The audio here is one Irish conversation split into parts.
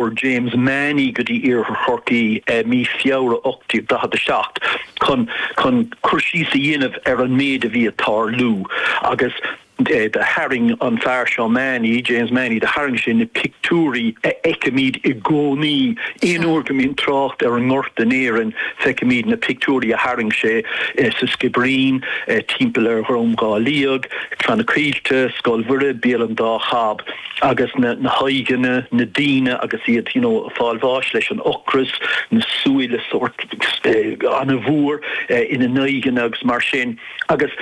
Chuir James Mahony go dtí Iarthar Chorcaí i mí Feabhra 1847 chun chun cur síos a dhéanamh ar an méid a bhí ag tarlú agus do tharraing an fear seo Mahony, James Mahony, do tharraing sé na pictiúirí a fheicimid i gcónaí. Aon uair go mbíonn trácht ar an ngorta in Éirinn feicimid na pictiúirí a tharraing sé sa Sciobairín, timpeall ar Dhrom Dhá Liag, Clanna Caoilte, Scoil Mhuire, Béal an Dá Chab. agus na haghaidheanna, na daoine agus iad you know ag fáil bháis leis an ocras, na súile sórt an-mhór ina n-aghaidheanna agus mar sin agus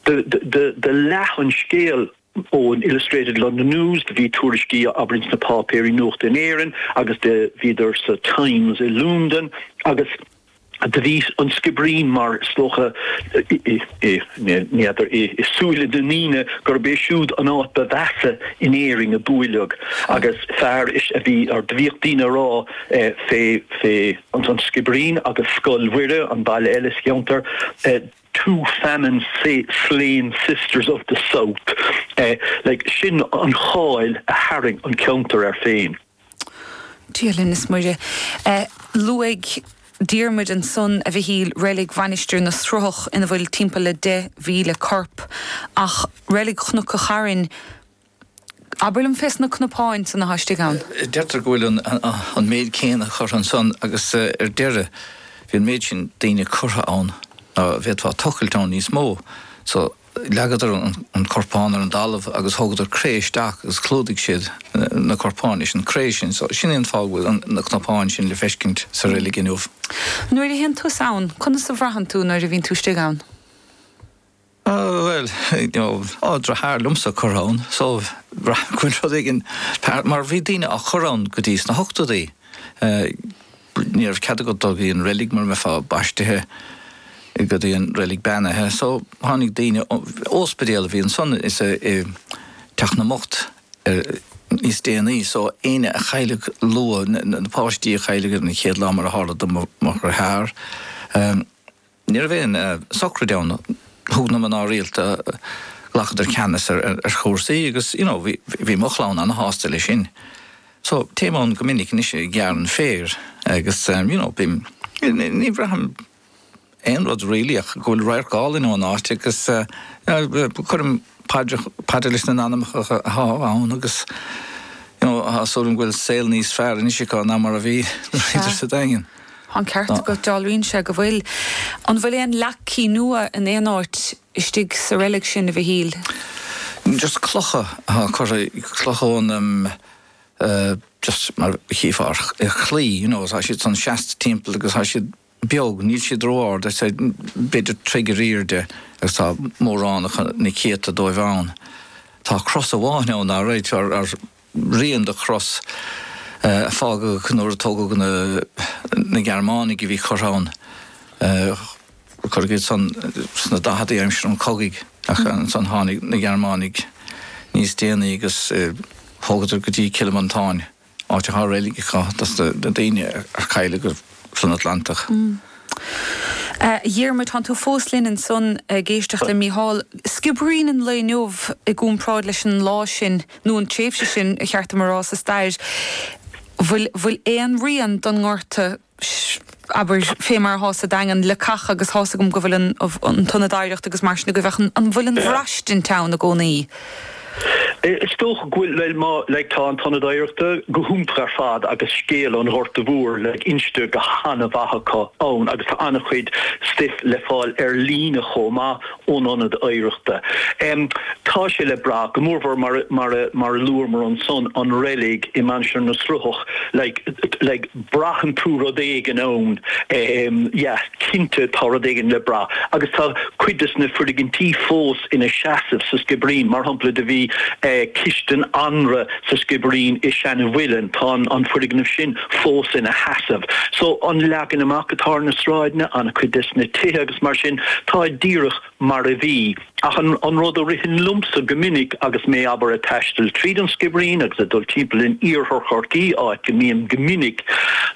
do leath an scéal ón Illustrated London News, do bhí tuairiscí abair ins na páipéirí nuachta in Éirinn agus do bhíodar sa Times i Lúndain agus. Do bhí an Sciobairín mar is dócha n'fheadar i súile na ndaoine gurb é siúd an áit ba mheasa in Éirinn a buaileadh agus fear a bhí ar, do bhíodh daoine a' rá fé, fé an Sciobairín agus Scoil Mhuire, an baile eile sa cheantar, two famine slain sisters of the South, like, sin an cháil a tharraing an ceantar air féin. Dia linn is Muire. Luaigh Diarmuid ansan, a Mhichíl, reilig Mhainistir na Sruthach ina bhfuil timpeall le 10,000 corp. Ach reilig Chnoc a' Chairn, abair liom fés na cnapáin san athá istigh ann? Deirtear go bhfuil an méid céanna curtha ansan agus ar deireadh bhí an méid sin daoine curtha ann ná bhféadfá tochailt ann níos mó so leagadar an corpán ar an dtalamh agus thugadar cré isteac agus clúdaigh siad na corpáin leis an cré sin so sin é an fáth go bhfuil na cnapáin sin le feiscint sa reilig inniu. Nuair a théann tusa ann, conas a bhraitheann tú nuair a bhíonn tú istigh ann? Bhuel, you know, tá deartháir liomsa curtha ann so bhraith go bhfuil rud éigin mar bhí daoine á chur ann go dtí sna hochtóidí. Ní raibh cead agat dul go dtí an reilig mura mbeifeá baistithe go dtí an reilig beannaithe. So, tháinig daoine, óspidéal a bhí ansan is i teach na mbocht níos déanaí. So, éinne a chailleadh luath, na páistí a chailleadh ar an chéad lá mar a tharla do mo dheartháir, Ní raibh aon socraid ann. Thug na mná rialta, ghlacadar ceannas ar chúrsaí agus you know bhí mo chlann an-shásta leis sin. So téim ann go minic anois ag gearradh an féir agus you know bím, ní bhraithim aon rud really ach go bhfuil radharc álainn ón áit agus cuirim paidreacha, paidir leis na n-anamacha atá ann agus you know tá súil agam go bhfuil saol níos fearr anois acu ná mar a bhí nuair a bhíodar sa Daingean. Tá an ceart agat, dealraíonn sé go bhfuil. An bhfuil aon leacaí nua in aon áit istigh sa reilig sin, a Mhichíl? Just clocha atá curtha, clocha ó na, just mar chífeá ar chlaí, you know, tá siad san seasta timpeall agus tá siad beag, níl siad ró-ard, I'd say b'fhéidir troigh ar aoirde agus tá mórán acu, na céadta dóibh ann. Tá cros amháin ann, alright, ar, rian do chros a fágadh nuair a tógadh na, na Gearmánaigh a bhí curtha ann, cuireadh iad san sna daicheadaí aimsir an chogaidh ach ansan tháinig na Gearmánaigh níos déanaí agus thógadar go dtí Cill Mhantáin, áit a bhfuil reilig acu dos na daoine a cailleadh. san Atlantach. A Dhiarmuid, tánn tú fós linn ansan ag éisteacht le Mícheál. Sciobairín an lae inniu i gcúmparáid leis an lá sin, nó an tréimhse sin, ba cheart dom a rá, sa stair. Bhfuil, bhfuil aon rian don ngorta, abair, fé mar atá sa Daingean, le ceart agus thá's agam go bhfuil an, an t-ionad oidhreachta agus mar sin agaibh ach an bhfuil an bhraistint ann i gcónaí? Is dócha go bhfuil, like, tá an tIonad Oidhreachta go hiontach ar fad agus scéal an Ghorta Mhóir, like, inste go han-mhaith acu ann agus tá an-chuid stuif le fáil ar líne chomh maith ón Ionad Oidhreachta. Tá sé le brath, go mórmhór mar a luamar ansan an reilig i Mainistir na Sruthach like braitheann tú rud éigin ann yeah cinnte tá rud éigin le brath agus tá cuid des na foirgintí fós ina seasamh sa Sciobairín. Mar shampla do bhí cistin anraith sa Sciobairín i seana mhuileann. Tá an foirgneamh sin fós ina sheasamh. So an leagan amach atá ar na sráideanna, ana-chuid des na tithe agus mar sin, tá díreach mar a bhí. Ach an rud a ritheann liomsa go minic agus mé abair a' taisteal tríd an Sciobairín agus a' dul timpeall in Iarthar Chorcaí, áit go mbím go minic,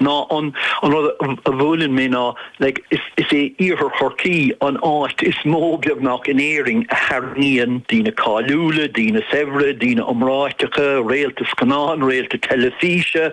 ná an rud a bhuaileann mé ná, Like, is é Iarthar Chorcaí an áit is mó, beagnach, in Éirinn a tharraingíonn daoine cáiliúla, daoine saibhre, daoine iomráiteacha, réalta scannáin, réalta teilifíse.